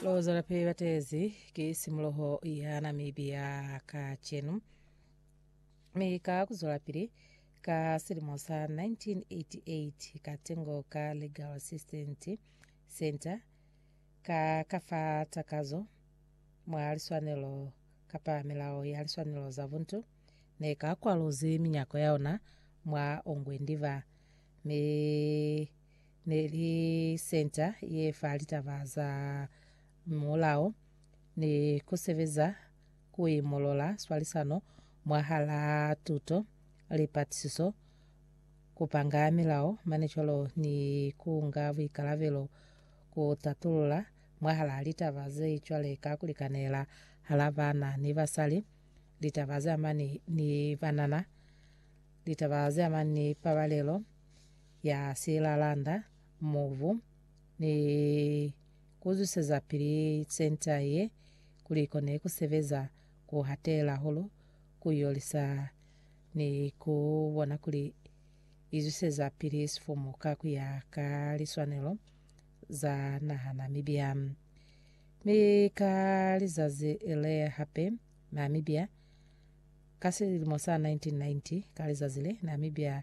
Lozo la pili batezi ki simuloho ya Namibia kacenu mi ka kuzwela pili ka silimo sa 1988 ka tengo ka Legal Assistant Center ka ka fa takazo mwa liswanelo kapa melao ya liswanelo za buntu ne ka kwalozi minyako ya ona mwa ongwe ndiba mi ne li senta ye fa litaba za mulao ni ku sebeza ku imolola swalisano mwahalaa tuto, lipatisiso, ku panga milao, manicolo ni ku nga buikalabelo ku tatulula mwahalaa litaba ze cwale ka ku likanela hala baana ni basali, litaba ze amani ni banana, litaba ze amani ni pabalelo, ya silalanda, mubu, ni kuzwisezapili senta ye kuli ikone kusebeza ku hatela hulu, ku yolisa, ni ku bona kuli izwiseza pili sifumu ka kuya ka liswanelo za naha Namibia. Mi ka lizazi le hape, Namibia, ka silimo sa 1990, ka lizazi le, Namibia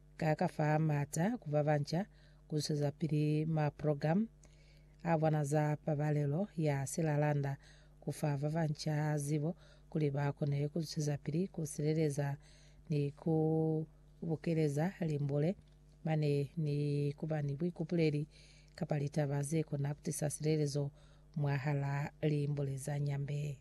Ka ka fa maata ku ba banca ku zwezapili maprogramu a bona za pabalelo ya silalanda, ku fa ba banca zibo kuli ba kone ku zwezapili ku sileleza ni ku bukeleza limbule mane ni ku ba ni buikupuleli kapa litaba ze kona ku tisa silelezo mwahalaa limbule za Nyambe.